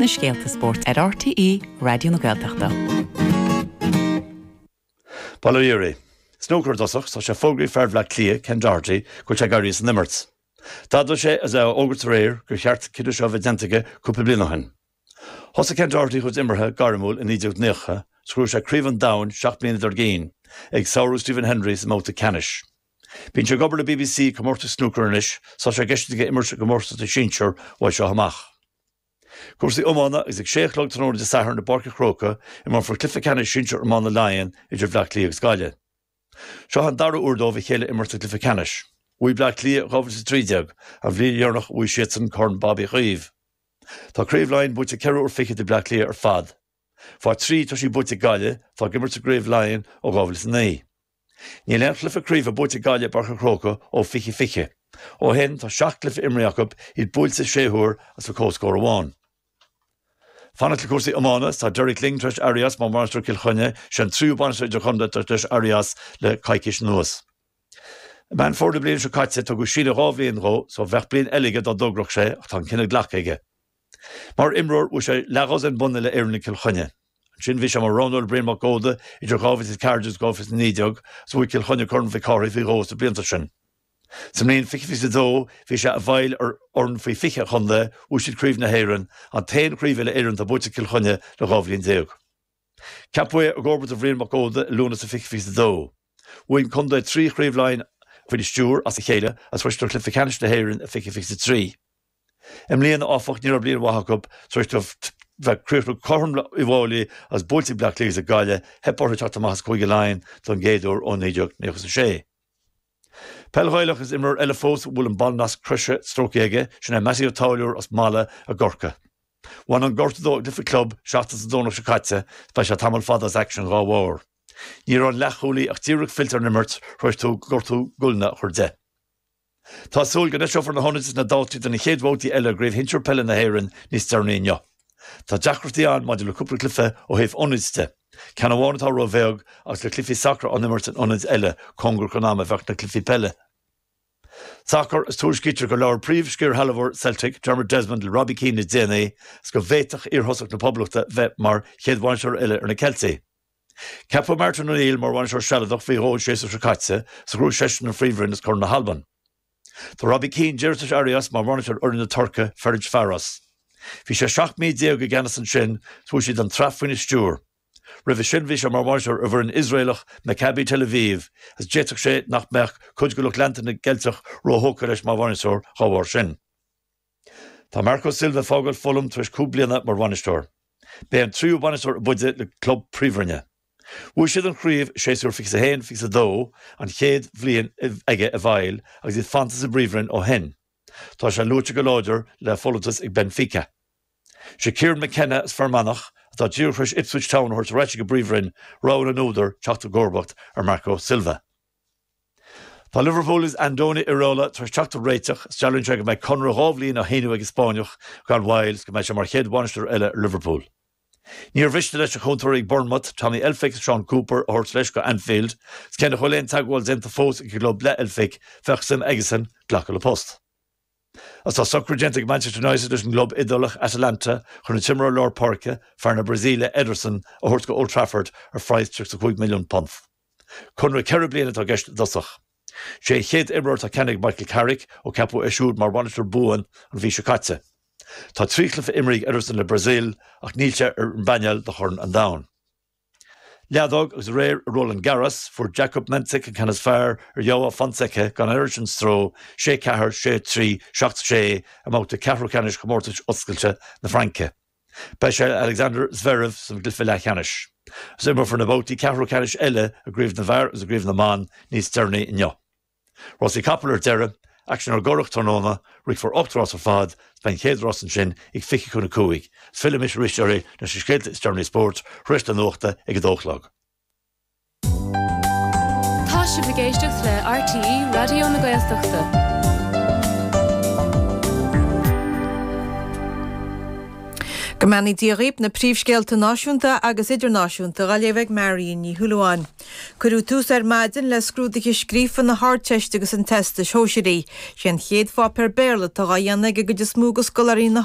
na scéalta spóirt ar RTÉ Raidió na Gaeltachta. Bail ó Dhia oraibh. Snúcar i dtosach, tá sé fógraithe ag fear Bhleá Cliath, Ken Doherty, go bhfuil sé ag éirí as an imirt. D'admhaigh sé is é á fhógairt aréir gur cheart an cinneadh seo a bheith déanta aige cúpla bliain ó shin. Thosaigh Ken Doherty a chuid imeartha gairmiúil i 1990 agus ghnóthaigh sé craobh an domhain seacht mbliana dár gcionn, ag sárú Stephen Hendry sa mbabhta ceannais. Bíonn sé ag obair le BBC ag comórtais snúcair anois, tá sé i gceist aige imirt i gcomórtas na sinsear uaidh seo amach. Cúrsaí iomána agus ag sé a chlog tráthnóna Dé Sathairn i bPáirc a' Chróca, imreofar cluiche ceannais sinsear iomána Laighean idir Bhleá Cliath agus Gaillimh. Seo an dara uair dóibh a chéile a imirt sa gcluiche ceannais. Bhuaigh Bleá Cliath i 2013, an bhliain dheireanach a bhuaigh siadsan Corn Bob Uí Chaoimh. Tá Craobh Laighean buaite ceithre uair fichead ag Bleá Cliath ar fad. Faoi thrí tá sí buaite ag Gaillimh, atá ag imirt sa gCraobh Laighean ó 2009. Níl aon chluiche craoibhe buaite ag Gaillimh i bPáirc an Chrócaigh ó 2020. Ó shin, tá seacht gcluiche imrithe acu, iad buailte sé huair agus le comhscór amháin. Fanacht le cúrsaí iomána, Tá Derek Lyng tar éis éirí as mar bhainisteoir Chill Chainnigh. Sé an tríú bainisteoir idirchontae atá tar éis éirí as le coicís anuas. I Meán Fómhair na bliana seo caite, tugadh síneadh dhá bhliain dhó só bheadh bliain eile aige dá dtogródh sé ach tá an cinneadh glactha aige. Mar imreoir bhuaigh sé leathdhosaen bonn uile-Éireann le Cill Chainnigh. Ansin bhí sé mar roghnóir ag Brian Mac Óda idir 2014 agus 2019 agus bhuaigh Cill Chainnigh Corn Mhic Cárthaigh faoi dhó sna blianta sin. Sa mbliain 2022 bhí sé i bhfeighil ar fhoireann faoi 20 a chontae, bhuaigh siad Craobh na hÉireann, an t-aon chraobh uile-Éireann atá buaite ag Cill Chainnigh le dhá bhliain déag. Ceapadh é i gcomharbacht ar Bhrian Mac Óda i Lúnasa 2022. Bhuaigh an contae trí Chraobh Laighean faoina stiúir as a chéile agus bhí siad i gcluiche ceannais na hÉireann i 2023. I mbliana, áfach, ní raibh bliain mhaith acu tar éis dóibh bheith críochnú cothrom le Uíbh Fháilí agus buailte ag Bleá Cliath agus ag Gaillimh, theip orthu teacht amach as Cúige Laighean don gcéad uair ó 1996. Peil Ghaelach Is imreoir eile fós a bhfuil an ballnasc croise stróicthe aige, sin é Mattie Ó Táilliúir as Mala i gCorca. Bhain an gortú dó i gcluiche club seachtain is an Domhnach seo caite agus beidh sé tamall fada as aicsean dhá bharr. Ní raibh an leathchúlaí ach díreach fillte ar an imirt tar éis dó gortú guailne a chur de. Tá súil go n-eiseofar na hionaid is na dátaí do na chéad bhabhtaí eile i gCraobh Shinsir Peile na hÉireann níos deireanaí inniu. Tá deacrachtaí ann maidir le cúpla cluiche ó thaobh ionaid de. Ceann amháin atá róbheag agus le cluichí sacair á n-imirt in ionaid eile, cóngarach don am a bheadh na cluichí peile. Sacar is tuairiscítear gur labhair príomh-scairshealbhóir Celtic, Dermot Desmond, le Robbie Keane le déanaí is go bhféadfadh iarthosach na Poblachta bheith mar chéad bhainisteoir eile ar na Ceiltigh. Ceapadh Martin O'Neill mar bhainisteoir sealadach faoi dhó an séasúr seo caite agus ghnóthaigh seisean an Phríomhroinn is Corn na hAlban. Tá Robbie Keane díreach tar éis éirí as mar bhainisteoir fhoireann na Tuirce, Ferencvaros. Bhí sé 17 mí i gceannas ansin agus bhuaigh siad an tsraith faoina stiúir. Roimhe sin bhí sé mar bhainisteoir ar an bhfoireann Iosraelach Maccabi Tel Aviv agus d'fhéadfadh sé nach mbeadh cuid de lucht leanta na gCeilteach róthógtha leis mar bhainisteoir dá bharr sin. Tá Marco Silva ag fágáil Fulham tar éis cúig bliana mar bhainisteoir. Ba é an tríú bainisteoir ab fhaide le club Príomhroinne. Bhuaigh siad an chraobh séasúr fiche is a haon, fiche is a dó, an chéad bhliain aige i bhfeighil agus iad fanta sa bPríomhroinn ó shin. Tá sé luaite go láidir le folúntas ag Benfica. Sé Kieran McKenna as Fear Manach, atá díreach tar éis Ipswich Town a thabhairt ar ais chuig an bPríomhroinn, rogha na n-údar teacht i gcomharbacht ar Marco Silva. Tá Liverpool agus Andoni Iraola tar éis teacht ar réiteach. Is dealraíonn sé go mbeidh conradh dhá bhliain á shíniú ag an Spáinneach gan mhoill agus go mbeidh sé mar chéad bhainisteoir eile ar Liverpool. Níor mhiste leis a chúntóirí ag Bournemouth, Tommy Elphick agus Shaun Cooper, a thabhairt leis go Anfield, is cé nach bhfuil aon teagmháil déanta fós ag an gclub le Elphick, bheadh suim aigesan glacadh le post. Agus tá socrú déanta ag Manchester United leis an gclub Iodálach Atalanta chun an t-imreoir lár páirce, fear na Brasaíle, Ederson, a thabhairt go Old Trafford ar phraghas £35 milliún. Conradh ceithre bliana atá i gceist i dtosach. Sé an chéad imreoir atá ceannaithe ag Michael Carrick ó ceapadh é siúd mar bhainisteoir buan an mhí seo caite. Tá trí chluiche imrithe ag Ederson le Brasaíl ach níl sé ar an bpainéal do Chorn an Domhain. Leadóg agus aréir i Roland Garros, fuair Jakub Mensik an ceann is fearr ar Joao Fonseca gan an oiread sin stró, sé ceathair, sé trí, seacht sé, i mbabhta ceathrú ceannais Chomórtas oscailte na Fraince. Buailfidh sé le Alexander Zverev sa bhabhta leathcheannais, agus imreofar na babhtaí ceathrú ceannais eile i gcraobh na bhfear agus i gcraobh na mban níos deireanaí inniu. Rásaí capall ar deireadh, aicsean ar an gCurrach tráthnóna, ríochfar ocht rás ar fad, is beidh an chéad rás ansin ag fiche chun a cúig, is fillfimis arís leis na scéalta is deireanaí spóirt tar éis na nuachta ag a dó a chlog. Tá sibh ag éisteacht le RTÉ Raidió na Gaeltachta. Go mbeannaí Dia dhaoibh na príomhscéalta náisiúnta agus idirnáisiúnta dhá léamh ag Marion Ní Shúilleabháin. Cuireadh tús ar maidin le scrúduithe scríofa na hArdteiste agus an Teastais Shóisearaigh. Sé an chéad pháipéar Béarla atá dhá dhéanamh ag an gcuid is mó de scoláirí na.